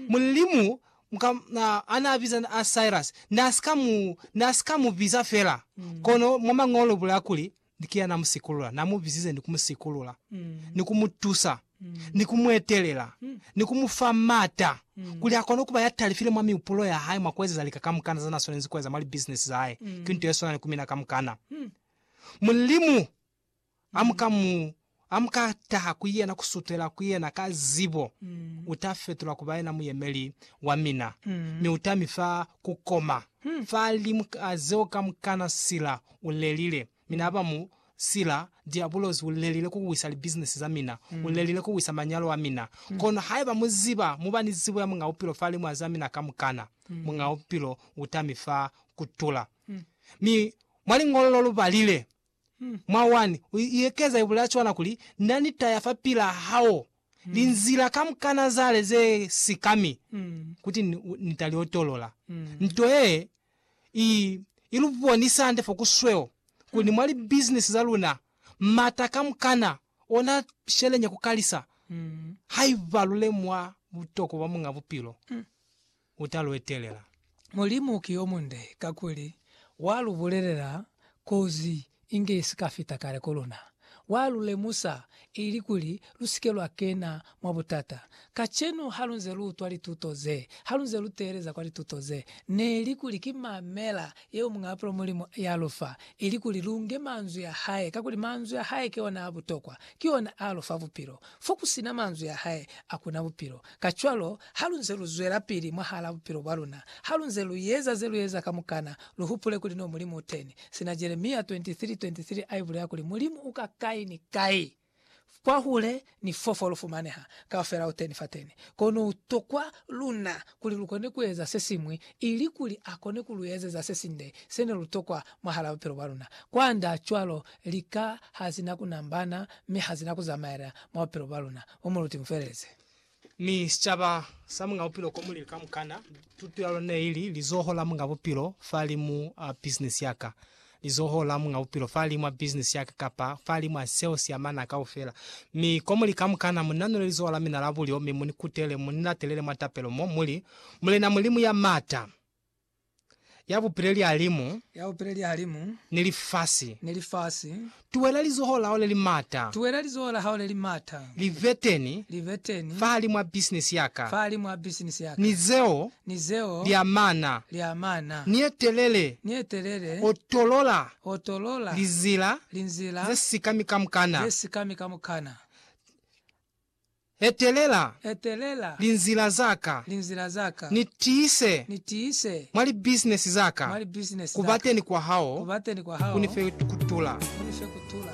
Mulimu mka anaabiza Cyrus naasika mubiza fela, kono mwa Mañolo bulaya kuli, Ni kiya namusikulula, namubizize ni kumusikulula, ni kumutusa, ni kumuetelela, ni kumufa maata kuli akone kuba yatalifile mwa mihupulo yahae mwa kuezeza lika kamukana zanaswanezi kueza mwa libizinesi zahae, ki nto yeswanani ku mina kamukana. Mulimu Amuka mu, amuka taha ku Yena, kusutela ku Yena ka zibo, uta fetulwa kuba yena muyemeli wa mina, mi uta mi fa kukoma fa limu ka zeo kamukana sila u lelile. Mina haba mu sila, Diabulosi u lelile ku wisa li business za mina, u lelile ku wisa manyalo a mina. Kono haiba mu ziba, mu ba ni zibo ya Muñ'a Bupilo fa limu za mina kamukana, Muñ'a Bupilo uta mi fa kutula. Mi mwa liñolo lo lu balile, Mwa 1, u iekeza ibulaa cwana kuli, Na ni taya fapilaa hao linzila kamukana zale ze sikami kuti Ni ta li otolola. Nto yee i i lu bonisa hande fo ku sweo kuli mwa libizinisi za luna, m'ata kamukana ona sheleña ku kalisa haiba lu lemuha butokwa bwa Muñ'a Bupilo. u ta lu etelela. Mulimu ki yo munde, kakuli wa lu bulelela kozi inge i si ka fita kale ku luna. Wa lu lemusa ilikuli lu si ke lwa kena mwa butata. Kacenu ha lu nze lu utwa lituto ze, ha lu nze lu teeleza kwa lituto ze, ne li kuli ki mamela yeo muñapulo Mulimu ya lu fa, ilikuli lu nge manzwi a hae, kakuli manzwi a hae ki ona a butokwa, ki ona a lu fa bupilo. Fo ku si na manzwi a hae, a ku na bupilo. Kacwalo, halunze luzwelapili mwahalaa bupilo bwaluna, halunze lueza zelueza kamukana, luhupule kuli no Mulimu uteni. Sina Jeremia 23:23 aibulela kuli Mulimu uka kai ni kai, kwahule ni fofo lufumaneha, kaufela uteni fateni. Kono utokwa luna kuli lukone kueza sesiñwi ilikuli akone kuluezeza sesinde sene lutokwa mwahalaa bupilo bwaluna. Kwanda cwalo, lika hazina kunambana mi hazina kuzamaela mwa bupilo bwaluna, mo muluti mufeelezi. Mi sicaba sa Muñ'a Bupilo ko mulili kamukana. Tuto ya lona neili Lizoho la Muñ'a Bupilo Fahalimu a Bisinisi ya Ka. Lizoho la Muñ'a Bupilo Fahalimu a Bisinisi ya Ka kapa Fahalimu a Seo si Amana Kaufela. Mi komuli kamukana, mu nanule lizoho la mina la bulyo, mi mu ni kutele, mu ni latelele mwa tapelo mo, mu li, Mulena Mulimu ya M'ata! ya bupile lihalimu ya bupile lihalimu ni lifasi. ni lifasi. Tuwela lizoho la hao le li mata. Tuwela lizoho la hao le li mata. Li be teni. Li be teni. fahalimu a bisinisi ya ka. fahalimu a bisinisi ya ka. Ni zeo. ni zeo. li amana. li amana. Ni ye telele. ni ye telele. O tolola. o tolola. linzila. linzila. ze sikami kamukana. ze sikami kamukana. Etelela Etelela linzila za ka, linzila za ka, ni tiise ni tiise mwa libisinesi za ka, mwa libisinesi ku za ka, bateni kwa hao, ku bateni kwa ku ni hao, fe kutula. ku ni fe kutula.